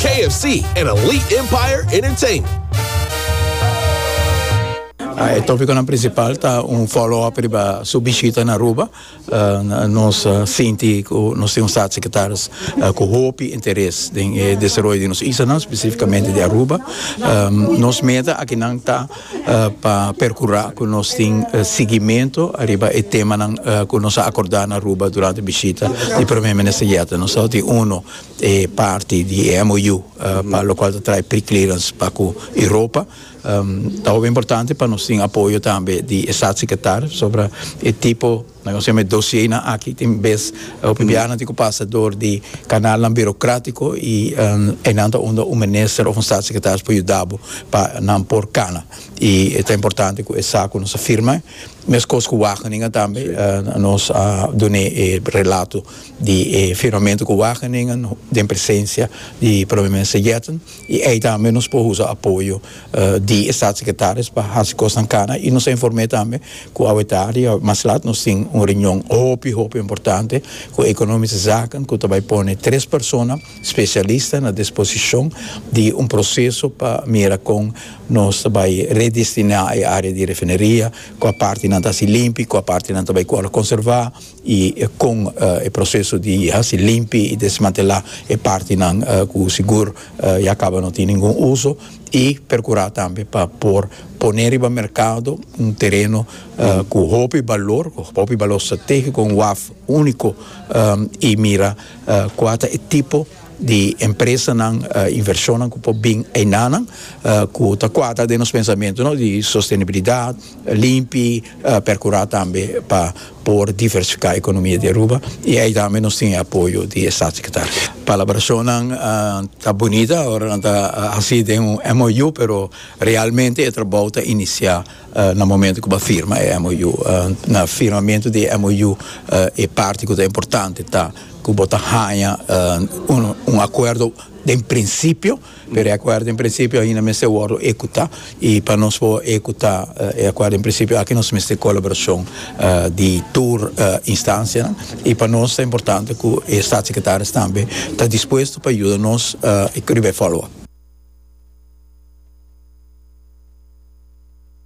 KFC en Elite Empire Entertainment. E tópikonan prinsipal ta un fòlò-op riba su bishita na Aruba. Nos sinti ku nos tin un Staatssecretaris ku hopi interes den e desaroyo di nos islanan, spesífikamente di Aruba. Nos meta akinan ta pa perkurá ku nos tin sigimentu ariba e temanan ku nos a akordá na Aruba durante bishita di Prome Minister Jette. Nos tin unu. e parti di e MOU pa lokual ta trae pre-clearance pa ku Europa. Ta hopi importante pa nos tin apoyo tambe di e Statssekretar sobra e tipo nan ku sema e dosienan aki tin bes hopi biahanan tin ku pasa dor di kanalnan birokratiko i einan ta unda un minister òf un Statssekretaris por yuda bo pa nan por kana i ta importante ku e sa ku nos a firma meskos ku Wageningen tambe nos a dun'é e relato. di e firmamento cu Wageningen den presencia di Prome Minister Jetten y ey tambe nos por usa apoyo di e Staatssecretaris pa haci cosnan cana y nos a informe tambe cu aweta riba mas lat nos tin un reunion hopi hopi importante cu Economische Zaken cu ta bay pone tres persona specialista na disposicion di un proceso pa mira con nos ta bay redestina e area di refineria cua partenan ta haci limpi cua partenan ta bay cu al a conserva. y con e proceso di haci limpi y desmantela e partinan cu sigur ya caba no tin ningun uso y percura tambe pa por pone riba mercado un tereno cu hopi balor cu hopi balor strategico un waf unico y mira cua ta e tipo di empresanan inversionnan cu por bin enanan cu ta cuadra den nos pensamentonan di sostenibilidad limpi percura tambe pa por diversifiká ekonomia di Aruba i ei tambe nos tin e apoyo di e Statssekretarienan. Palabrashonnan ta bunita ora nan ta hasi den un MOU pero realmente e trabou ta inisiá na momento ku bo a firma e MOU. Na firmamentu di e MOU e parti ku ta importante ta ku bo ta haña un akuerdo den prinsipio. Pero e akuerdo en prinsipio ainda mester wòrdu ekutá i pa nos por ekutá e akuerdo en prinsipio aki nos mester kolaborashon di tur instansianan i pa nos ta importante ku e statssekretaris tambe ta dispuesto pa yuda nos riba e fòloap.